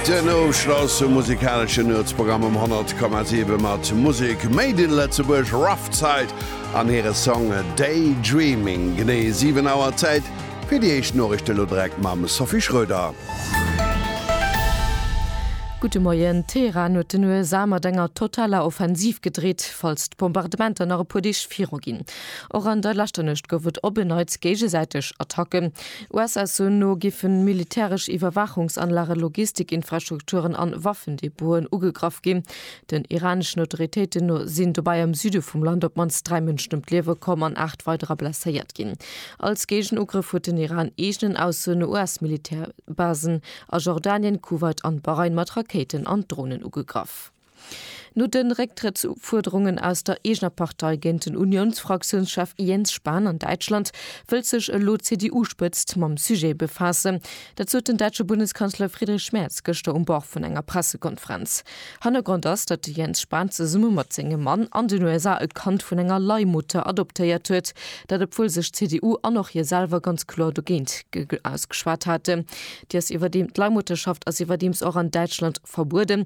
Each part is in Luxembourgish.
Den Ofschloss um musikalesche Nuetsprogramm um 100,7 mat Musek made in Lëtzebuerg, Rough Side an hire Song Day Dreaming. Genee 7 Auer Zäit fir déi éischt Noriichten, elo direkt mam Sophie Schröder. Gudde Moien, Teheran huet den USA mat enger totaler Offensiv gedreet, falls d'Bombardementer nach e puer Deeg viruginn. Och an der leschter Nuecht gouf et op en Neits géigesäiteg Attacken. Usa-Sourcen no giffen militäresch Iwwerwaachungsanlagen, Logistikinfrastrukturen an Waffendepoten ugegraff ginn. Den iraneschen Autoritéiten no sinn dobäi am Süde vum Land op d'mannst dräi Mënschen ëm d'Liewe komm an aacht weiderer blesséiert ginn. Als Géigenugrëff huet den Iran eegenen Aussoen no US-Militärbasen a Jordanien, Kuwait an Bahrain mat Rakéiten an Dronen ugegraff. No de Récktrëttsfuerderungen aus der eegener Partei géint den Uniounsfraktiounschef Jens Spahn an Däitschland, wëllt sech elo d'CDU-Spëtzt mam Sujet befaassen. Dat sot den däitsche Bundeskanzler Friedrich Merz gëschter um Bord vun enger Pressekonferenz. Hannergrond ass, datt de Jens Spahn zesumme mat sengem Mann an den USA e Kand vun enger Leihmutter adoptéiert huet. Dat obwuel sech d'CDU an och hie selwer ganz kloer dogéint ausgeschwat haten. Déi ass iwwerdeem, d'Leihmutterschaft ass iwwerdeems och an Däitschland verbueden.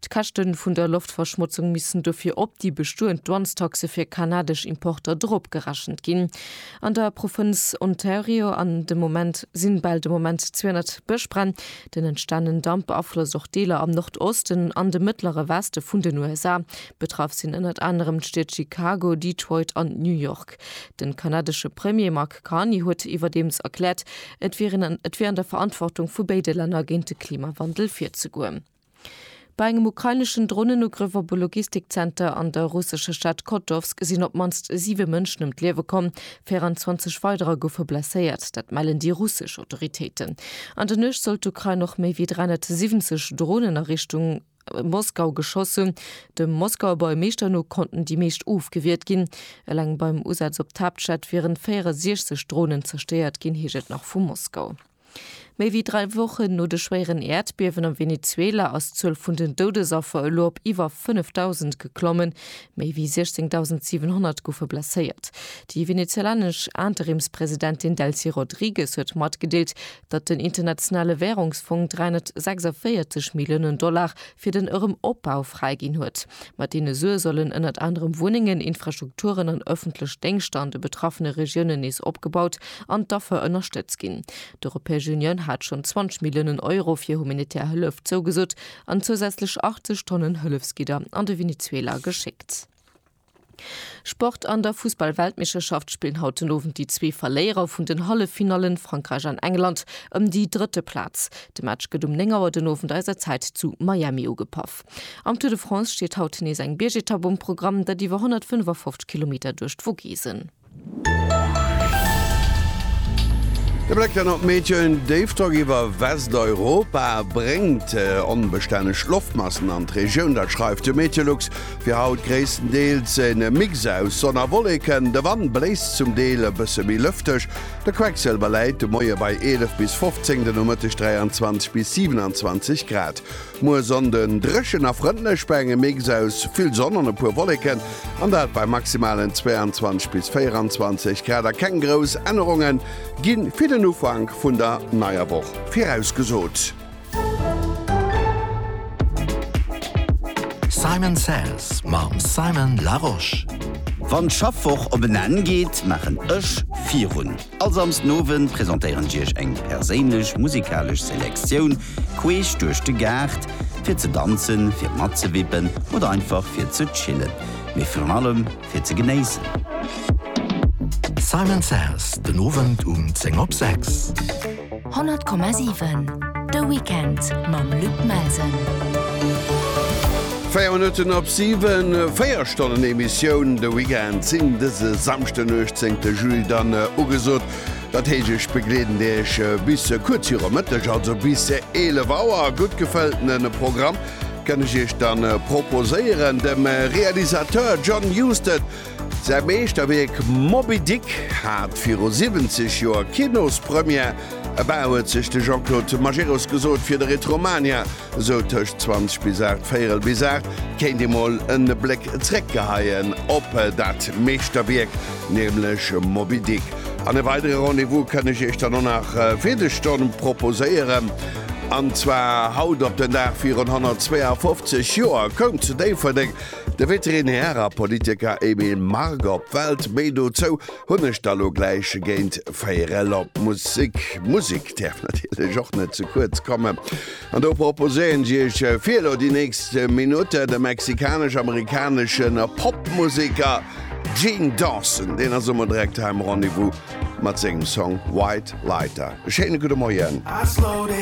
D'Käschte vun der Loftverschmotzung missten dofir op déi bestoend Douanestaxe fir kanadesch Importer dropgerechent ginn. An der Provënz Ontario an de Moment sinn bal de Moment 200 Bëschbränn. Den entstanen Damp beaflosst och Deeler am Nordosten an dem mëttlere Weste vun den USA. Betraff sinn ënnert anerem d'Stied Chicago, Detroit an New York. Den kanadesche Premier Mark Carney huet iwwerdeems erkläert, et wier an der Verantwortung vu béide Länner géint de Klimawandel virzegoen. Bei engem ukraineschen Dronenugrëff op e Logistikzenter an der russescher Stad Kotowsk sinn op d'mannst siwe Mënschen ëm d'Liewe komm, 24 weiderer goufe blesséiert. Dat mellen déi russesch Autoritéiten. An der Nuecht soll d'Ukrain och méi wéi 370 Dronen a Richtung Moskau geschoss hunn. Dem Moskauer Buergermeeschter no konnten déi meescht ofgewiert ginn. Eleng beim Usaz op d'Haaptstad wieren 64 Dronen zerstéiert ginn, heescht et nach vu Moskau. Méi wéi dräi Wochen no de schwéieren Äerdbiewen am Venezuela ass d'Zuel vun den Doudesaffer elo op iwwer 5.000 geklommen. Méi wéi 16.700 goufe blesséiert. Déi venezuelanesch Interimspresidentin Delcy Rodrigues huet matgedeelt, datt den Internationale Wärungsfong 346 Milliounen Dollar fir den erëm Opbau fräiginn huet. Mat deene Sue sollen ënnert anerem Wunnengen, Infrastrukturen an ëffentlech Déngschter an de betraffene Regiounen nees opgebaut an d'Affer ënnerstëtzt ginn. D'Europäesch Unioun hat schonn 20 Milliounen Euro fir humanitär Hëllef zougesot an zousätzlech 80 Tonnen Hëllefsgidder an de Venezuela geschéckt. Sport, An der Fussball-Weltmeeschterschaft spillen haut den Owend déi zwee Verléierer vun den Halleffinallen, Frankräich an England, ëm déi drëtte Plaz. De Match gëtt um 9 Auer den Owend eiser Zäit zu Miami ugepaff. Am Tour de France steet haut nees eng Biergetapp um Programm, dat iwwer 155 Kilometer duerch d'Vogesen. De Bléck dann op d'Méthoden Déifdrock iwwer Westeuropa bréngt onbestänneg Loftmassen an d'Regioun. Dat schreift de Meteolux. Fir haut gréisstendeels en Mix aus Sonn a Wolleken. De Wand bléist zum Deel e bësse méi lëfteg. De Quecksilber läit de Moie bei 11 bis 15, de Nomëtteg 23 bis 27 Grad. Muer Sonnden, dréchen a frëndlech bei engem Mix aus vill Sonn an e puer Wolleken, an dat bei maximalen 22 bis 24 Grad a keng grouss Ännerunge gi fir den Ufank vun der neier Woch virausgesot. Simon Says mam Simon Larosche. Wann d'Schaffwoch op en Enn geet, maachen ech virun. All Samsdenowend presentéieren ech iech eng perséinlech musikalesch Selektioun queesch duerch de Gaart, fir ze danzen, fir matzewippen oder einfach fir ze chillen, mee virun allem fir ze genéissen. Simon Says, den Owend um 10 op 6. 100,7 De Weekend mam Luc Melsen. 4 Minutten op 7 4 Stonnen Emissioun de Weekend sinn dëse Samchten 18. Juli dann äh, ugesot. Dat hegeg begleeden Deeg äh, bis äh, kurz hirer Mëtteg, also bis 11 Auer gutt gefëlltenen Programm kënne ich Iech dann proposéieren dem Realisateur John Husted Säi Meeschterwierk Moby Dick hat viru 70 Joer Kinospremière. Abou huet sech de Jean-Claude Majerus gesot, fir de Retromania, esou tëscht 20 bis 8, véierel bis 8, kéint ee mol e Bléck zréckgeheien op dat Meeschterwierk, nämlech Moby Dick. An e weidere Rendez-vous kënn ech iech dann och nach fir des Stonn proposéieren, an zwar haut op den Dag virun 152 Joer koum zu Déifferdeng De Veterinärer Politiker Emile Margue op d'Welt, méi dozou hunn ech da lo gläich géint véierel op d'Musek. Musek däerf natierlech och net ze kuerz kommen an do proposéieren ech Iech fir elo déi nächst Minutte de mexikanesch-amerikanesche Popmuseker Gene Dawson. Deen ass emol direkt hei am Rendez-vous mat sengem Song White Lighter. E schéine gudde Moien.